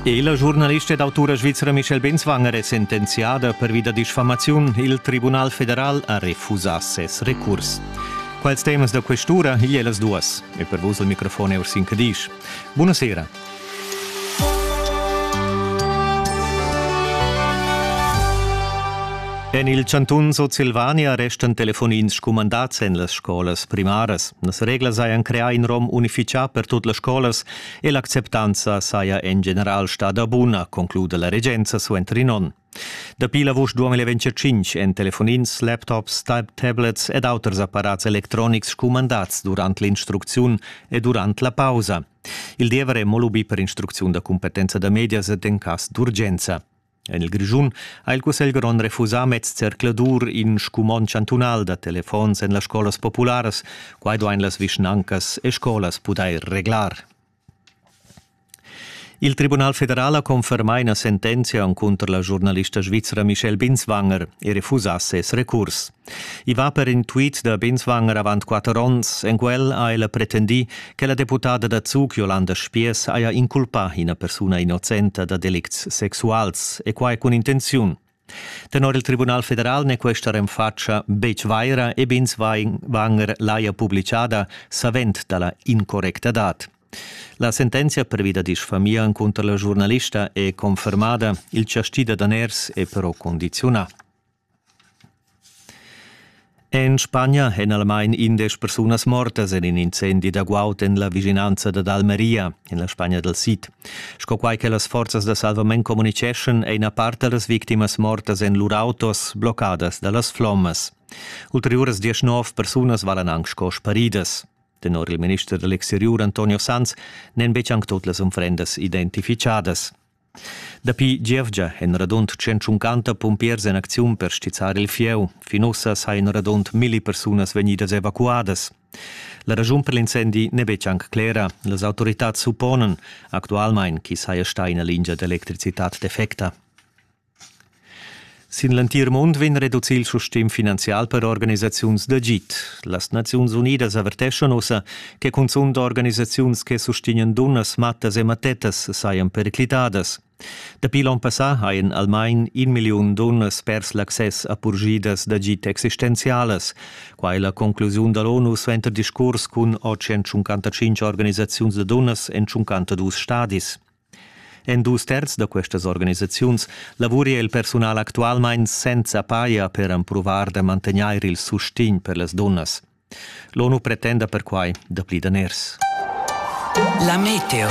E la giurnalista ed autura svizra Michelle Benswanger è sentenziada pervi da disfamaziun. Il Tribunal federal ha refusà ses recurs. Quels temas da questura igl è las duas. E per vus il microfon è Ursin Cadisch. Buonasera. En il chantun Sutsilvania restan telefonins scumandads en las scolas primaras. Las reglas hajan creà in rom unifichà per tut las scolas e l'acceptanza saja en general stada buna, concluda la regenza suenter in onn. Dapi l'avust 2025 èn telefonins, laptops, tablets ed auters apparats electronics scumandads durant l'instrucziun e durant la pausa. Il diever è mo lubì per instrucziun da cumpetenza da medias ed en cas d'urgenza. En il Grischun ha il Cussegl grond refusà mez zercladur in scumond chantunal da telefons en las scolas popularas. Quai duain las vischnancas e scolas pudair reglar. Il Tribunal federal ha confermà ina sentenzia encunter la giurnalista svizra Michelle Binswanger e refusà ses recurs. I va per in tweet da Binswanger avant quatter onns. En quel ha ella pretendì che la deputada da Zug Jolanda Spiess haja inculpà ina persuna innocenta da delicts sexuals e quai cun intenziun. Tenor il Tribunal federal n'è questa renfatscha betg vaira e Binswanger l'haja publicada savend da la incorrectadad. La sentenzia previda disfamia cunter la giurnalista è confermada, il chastì da daners è però condiziunà. En Spagna èn almain indesch persunas mortas en in incendi da guaud en la vischinanza dad Almeria, en la Spagna dal sid. Sco quai che las forzas da salvament communitgeschan, è ina part da las victimas mortas en lur autos bloccadas da las flommas. Ulteriuras diesch nov persunas valan anc sco sparidas. Tenor il minister da l'exteriur Antonio Sanz n'èn betg anc tut las unfrendas identificadas. Dapi gievgia èn radund centuncanta pumpiers en acziun per stizzar il fieu. Fin ussa sajan radund milli persunas vegnidas evacuadas. La raschun per l'incendi n'è betg anc clera. Las autoritads supponan actualmain ch'i saja stà ina lingia d'electricitad defecta. Sin l'entir mund vegn reducì il sustegn finanzial per organisaziuns d'agid. Las Naziuns Unidas averteschan ussa che cunzunt organisaziuns che sustegnan dunnas, mattas e mattettas sajan periclitadas. Dapi l'onn passà hajan almain in milliun dunnas pers l'access a purgidas d'agid existenzialas. Quai è la conclusiun da l'ONU suenter discurs cun 855 organisaziuns da dunnas en 52 stadis. En dus terz da questas organisaziuns lavuria il persunal actualmein senza paia per empruvar da mantegnair il sustegn per las dunnas. L'ONU pretenda perquai dapli daners. La meteo.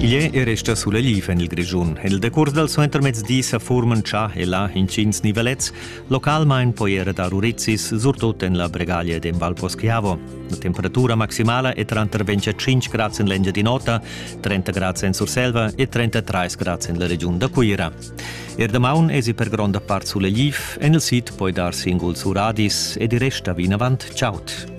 Igl è resta sulla liv en il Grischun. Il decurs dal suentermezdi sa furman già e là intgins nivelets, Localmain poi era dar urizis, surtut en la Bregaglia ed en Val Poschiavo. La temperatura maximala è tranter 25 grads en l'Engiadin'Ota, 30 grads en Surselva e 33 grads en la regiun da Cuira. Er damaun esi per gronda part sulegliv, en il sid poi dar singuls uradis ed il rest da vinavant chaud.